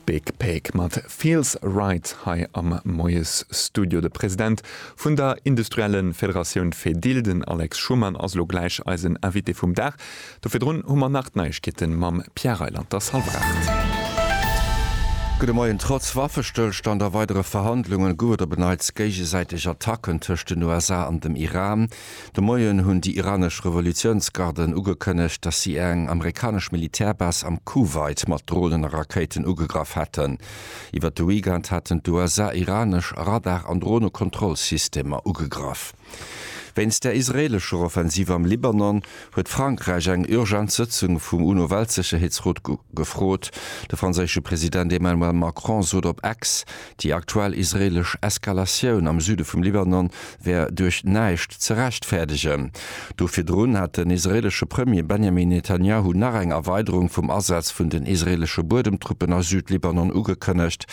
Big Pig mat Feels Right hei am Moiesstudio. De President vun der industrielle Federatioun Fedil, den Alex Schumann, ass elo gläich eisen Invité vum Dag. Do virdrun hu mer nach d'Neiegkeete mam Pierre Reyland. T'ass hallef aacht. Gudde Moien. Trotz Waffestëllstand a weidere Verhandlunge gouf et op en Neits géigesäiteg Attacken tëscht den USA an dem Iran. De Moien hunn déi iranesch Revolutiounsgarden ugekënnegt, datt si eng amerikanesch Militärbase am Kuwait mat Dronen a Rakéiten ugegraff hätten. Iwwer de Weekend haten d'USA iranesch Radar an Dronekontrollsystemer ugegraff. Wéinst der israeelescher Offensiv am Libanon huet Frankräich eng urgent Sëtzung vum UNO-Weltsécherheetsrot gefrot. De franséische President Emmanuel Macron sot op X, déi aktuell israeelesch Eskalatioun am Süde vum Libanon wär duerch näischt ze rechtfäerdegen. Do virdrun hat den israeelesche Premier Benjamin Netanjahu nach eng Erweiderung vum Asaz vun den israeelesche Buedemtruppen a Südlibanon ugekënnegt.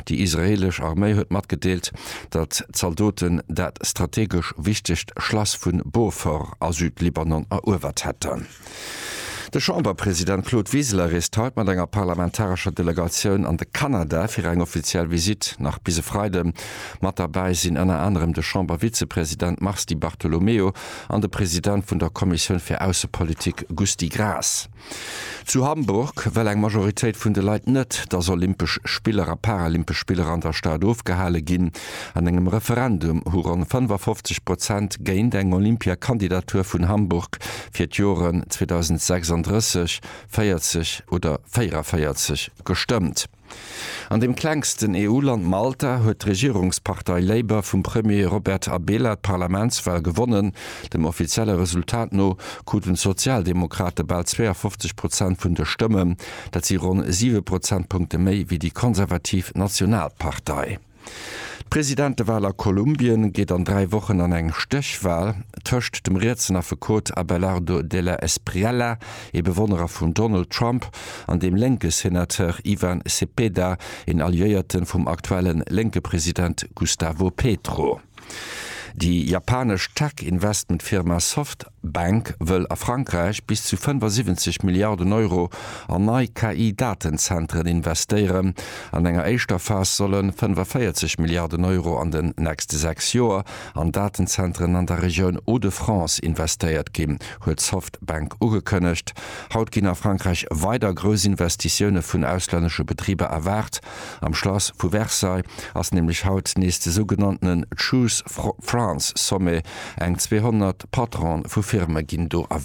Déi israeelesch Arméi huet matgedeelt, datt d'Zaldoten dat strategesch wichtegt Schlass vu Beaufort a Südlibanon eruewert hätten. De Chamberpresident Claude Wiseler reest haut mat enger parlamentarescher Delegatioun an de Kanada fir eng offiziell Visitt. Nach bis e Freide mat derbäi sinn ënner anerem de Chambervizepresident Mars Di Bartolomeo an de President vun der Kommissioun fir Aussepolitik Gusty Graas. Zu Hamburg wëll eng Majoritéit vun de Leit net, dass Olympesch Spiller a Paralympesch Spiller an der Stad ofgehale ginn. An engem Referendum hu ronn 55 Prozent géint eng Olympiakandidatur vun Hamburg fir d'Joren 2036, 40 oder 44 gestëmmt. An dem klengsten EU-Land Malta huet d'Regierungspartei Labour vum Premier Robert Abela d'Parlamentswal gewonnen. Dem offizielle Resultat no kruten d'Sozialdemokrate bal 52 Prozent vun de Stëmmen, dat si ronn siwe Prozentpunkte méi wéi déi konservativ Nationalpartei. D'Presidentewal a Kolumbien geet an dräi Wochen an eng Stéchwal tëscht dem rietsen Affekot Abelardo de la Espriella, ee Bewonnerer vum Donald Trump, an dem lénke Senateur Ivan Cepeda, een Alliéierte vum aktuelle lénke President Gustavo Petro. Déi japanesch Tech-Investmentfirma Soft D'Bank wëll a Frankräich bis zu 75 Milliarden Euro an nei KI-Datenzentren investéieren. An enger éischter Phas solle 45 Milliarden Euro an den nächste sechs Joer an Datenzentren an der Regioun Hauts-de-France investéiert ginn, huet d'Softbank ugekënnegt. Haut ginn a Frankräich weider grouss Investitioune vun auslännesche Betriber erwaart. Am Schlass vu Versailles ass nämlech haut nees de sougenanntene Choose France Sommet, eng 200 Patronen vu Firme ginn do